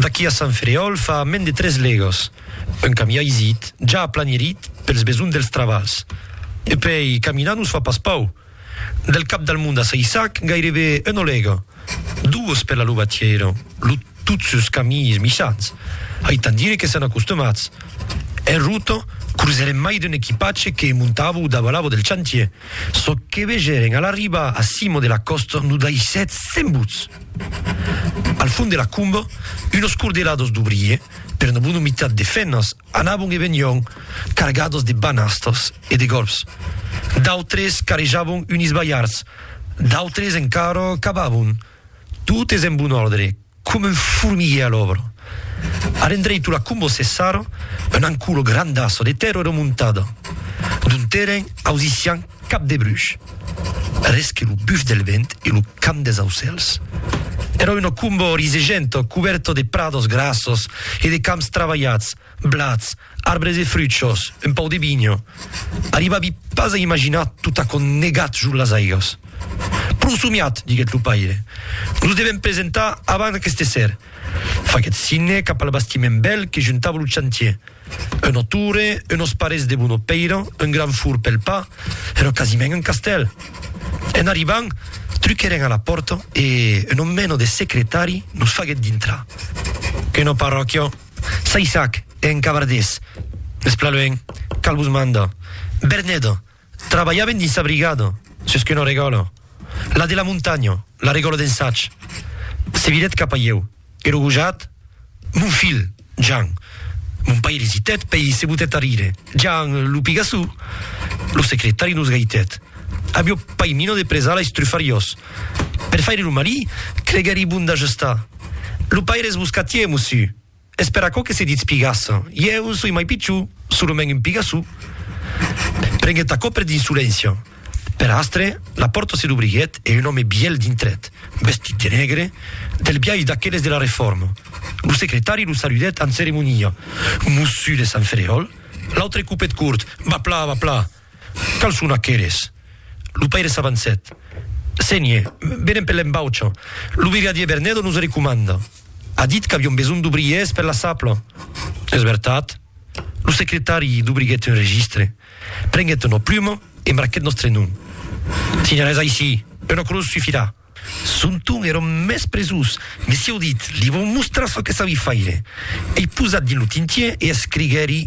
D'aquí a Sant Ferèol fa mens de tres legas, un camià isit, ja aplanirit pels besonhs dels trabalhs. E puèi caminar nos fa pas pau. Del Cap del Mond a Saissac, gairebe una lega, duas per la Lobatièira, lo tot sus caminhs michans, aitant dire que sèn acostumats. En rota, cruzèrem mai d'un equipatge que montava o davalava del chantier. Çò que vegèren a l'arribar a cima de la còsta lo daissèt sembuts. Al fond de la comba, unos cordelados d'obriers, per una bona mitat de femnas, anavan e venián cargados de banastas e de gòlfs. D'autres carejavan unis balhards, d'autres encara cavavan. Tot es en bon òrdre, Com un formiguer a l'òbra. Ar endreitu la combo Cessara, un anculo grandaço de tèrra remontada, d'un terren ausissian cap de bruch, res que lo buf del vent e lo cant des aucèls. Èra una combo risegenta, cubèrta de prados grassos e de camps travalhats, Blats, arbres e fruchos, un pau de vinho. Arribavi pas a imaginar tot aquò negat jos las aigas. Pro somiat, diguèt lo paire. Nos devèm presentar avant aqueste esser. Faguèt signe cap al bastiment bèl que juntava lo chantier. Una torre, unos parets de bona pèira, un grand fur pel pa, èra quasiment un castèl. En arribant, truquèrem a la pòrta e un omeno de secretari nos faguèt dintrar. Quina parròquia! Saissac, en cavardés, Esplaluènh, cal vos mandar. Berneda, trabalhaven dins sa brigada, sus qu'una regòla, la de la montanha, la regòla d'Ensatj. Se virèt cap a ieu, ero gojat, Mon filh, Jan. Mon pair esitèt, pei se botèt a rire, Jan, lo pigassó! Lo secretari nos gaitèt, Avió pai mina de presar lais trufariós. Per faire lo malí, creguèri bon d'ajustar. Lo paire es boscatier, mossu. Es per aquò que se ditz pigassa. Ieu soi mai pichó, solament un pigassó. Prenguèt aquò per d'insolència. Per astre, la pòrta se dobriguèt e un òme bielh dintrèt, vestit de negre, del biais d'aqueles de la Refòrma. Lo secretari lo saludèt amb ceremonia. Mossu de Sant Fereròl? L'autre copèt cort, Vapla, vapla! Quals son aqueles? Lo paire s'avancèt. Sénher, venem per l'embaucha. Lo brigadier Bernedo nos recomanda. A dit qu'aviom besonh d'obriers per la sapla. Es vertat? Lo secretari dubriguèt un registre, prenguèt una pluma e marquèt nòstre nom. Signalèz aicí, una crotz sufirà. Son ton èra mès presós. Messieu dit, li vòm mostrar çò que sabi faire. Ei posat dins lo tintier e escriguèri.